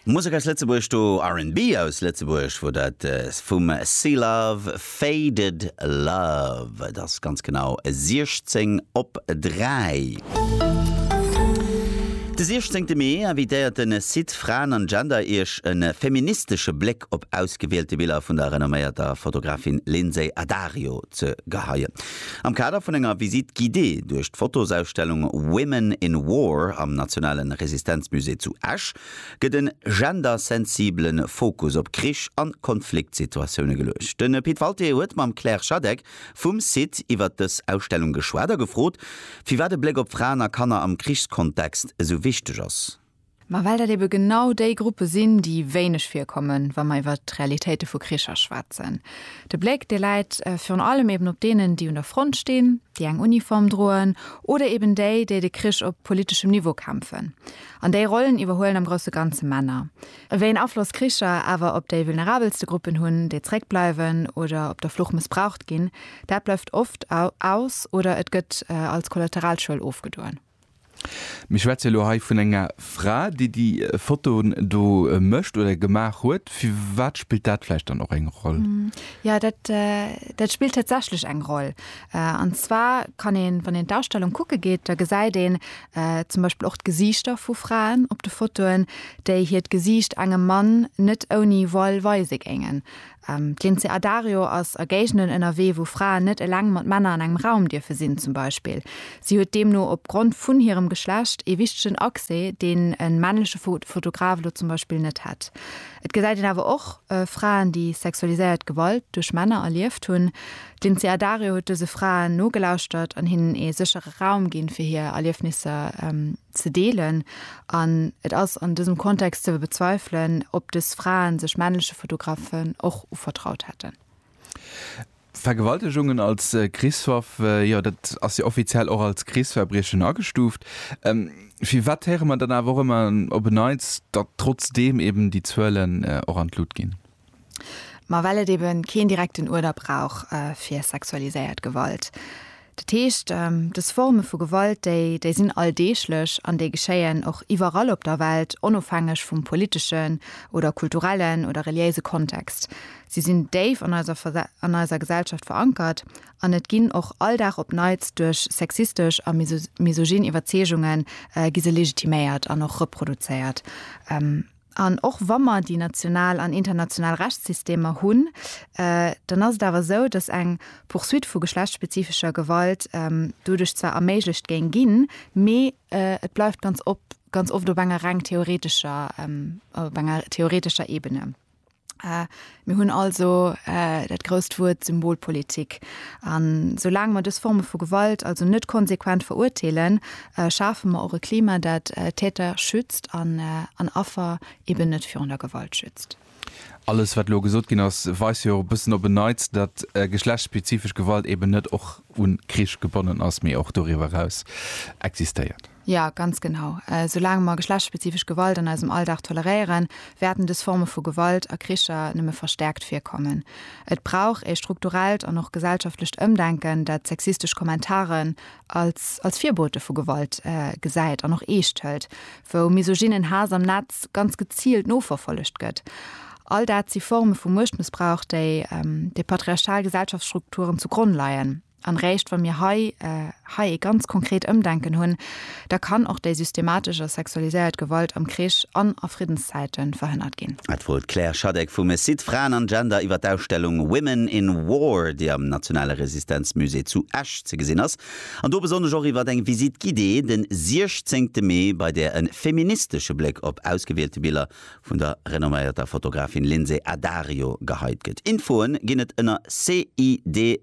Musek aus Lëtzebuerg do, R&B aus Lëtzebuerg wor dat vum C-Love, Faded Love. Et ass ganz genau 16 op 3. De 16 Mee invitéiert den Site Fraen an Gender iech en feministesche Bléck op ausgewielte Biller vun der renomméierter Fotografin Lindsay Addario ze geheien. Am Kader vun enger Visite guidée duerch d'Fotosausstellung Women in War am Nationale Resistenzmusée zu Esch gëtt e gendersensibele Fokus op Krich a Konfliktsituatioune geluecht. De Pit Walté huet mam Claire Schadeck vum site iwwert dës Ausstellung geschwat a gefrot, firwat e Bléck op Fraen a Kanner am Krichskontext esou wichteg ass. Mä well dat ebe genau déi Gruppe sinn, déi wéineg virkommen, wa mer iwwert d'Realitéite vu Kricher schwätzen. De Bléck, dee läit virun allem eben op deenen, déi un der Front stinn, déi eng Uniform droen, oder eben déi, déi de Krich op politeschem Niveau kämpfen. An déi Rollen iwwerhuelen am grousse Ganze Männer. Wéi een Afloss Kricher awer op déi vulnerabelste Gruppen hunn, déi zréckbleiwen oder op der Flucht mëssbraucht ginn, dat bleift oft aus oder et gëtt als Kollateralschuel ofgedoen. Mir schwätze jo lo hei vun enger Fra, déi déi Fotoen do mécht oder gemaach huet. Firwat spillt dat vläicht dann och eng Roll? Jo, dat, dat spillt tatsächlech eng Roll. An zwar kann een, wann een d'Ausstellung kucke geet, da gesäit een zum Beispill och d'Gesiichter vu Fraen op de Fotoen, déi hiert Gesiicht engem Mann net ouni voile weise géingen. D'Lindsay Addario ass a Géigenden ënnerwee, wou Fraen net eleng mat Männer an engem Raum dierfe sinn, zum Beispill. Si huet deemno op Grond vun hirem Geschlecht ee wichtegen Accès, deen e männleche Fotograf elo zum Beispill net hätt. Et gesäit een awer och Fraen, déi sexualiséiert Gewalt duerch Männer erlieft hunn. D'Lindsay Addario huet dëse Fraen nogelauschtert an hinnen ee séchere Raum ginn, fir hir Erliefnisser ze deelen an et ass an dësem Kontext ze bezweifelen, ob dës Fraen sech männleche Fotografen och uvertraut hätten. Vergewaltegungen als Krichswaff, jo dat ass jo offiziell och als Krichsverbriechen agestuuft. Firwat héiere mer dann awer och ëmmer op en Neits, datt trotzdeem eben déi Zuelen och an d'Lut ginn? Ma well et ebe keen direkten Uerder brauch fir sexualiséiert Gewalt. Dat heescht, dës Forme vu Gewalt, déi déi sinn alldeeglech an déi geschéien och iwwerall op der Welt, onofhängeg vum politeschen oder kulturellen oder reliéise Kontext. Si sinn déif an eiser an eiser Gesellschaft verankert an et ginn och all Dag op Neits duerch sexistesch a misogyn Iwwerzeegungen gi se legitiméiert an och reproduzéiert. An och wa mer déi national an international Rechtssystemer hunn, dann ass et awer esou, dass eng Poursuite vu geschlechtsspezifescher Gewalt doduerch zwar erméiglecht géing ginn, mee et bleift ganz oft op enger reng theoretescher, op enger theoretescher Ebene. Mir hunn also dat grousst Wuert Symbolpolitik. A soulaang mer dës Forme vu Gewalt also net konsequent verurteelen, schafe mer och e Klima, dat Täter schützt an Affer eben net virun der Gewalt schützt. Alles, wat elo gesot ginn ass, weist jo och e bëssen op en Neits, datt geschlechtsspezifesch Gewalt eben net och un Krich gebonnen ass, mee och doriwwer eraus existéiert. Jo, ganz genau. Soulaang mer geschlechtsspezifesch Gewalt an eisem Alldag toleréieren, wäerten dës Forme vu Gewalt a Kricher nëmme verstäerkt virkommen. Et brauch ee strukturellt an och gesellschaftlecht Ëmdenken, dat sexistesch Kommentaren als als Virbote vu Gewalt gesäit an och eescht hëlt, wou misogynen Haass am Netz ganz geziilt noverfollegt gëtt. All dat si Forme vu Muechtmëssbrauch, déi de patriarchal Gesellschaftsstrukturen zu Gronn leien. An réischt wa mir hei hei ee ganz konkret Ëmdenken hunn, da kann och déi systematesch a sexualiséiert Gewalt am Krich an a Friddenszäite verhënnert ginn. Dat woolt d'Claire Schadeck vum Site Fraen an Gender iwwer d'Ausstellung Women in War, déi am Nationale Resistenzmusée zu Esch ze gesinn ass, an do besonnesch och iwwer eng Visite guidée de 16 Mee, bei där e feministesche Bléck op ausgewielte Biller vun der renomméierter Fotografin Lindsay Addario geheit gëtt. Infoe ginn et ënner sid-fg.lu.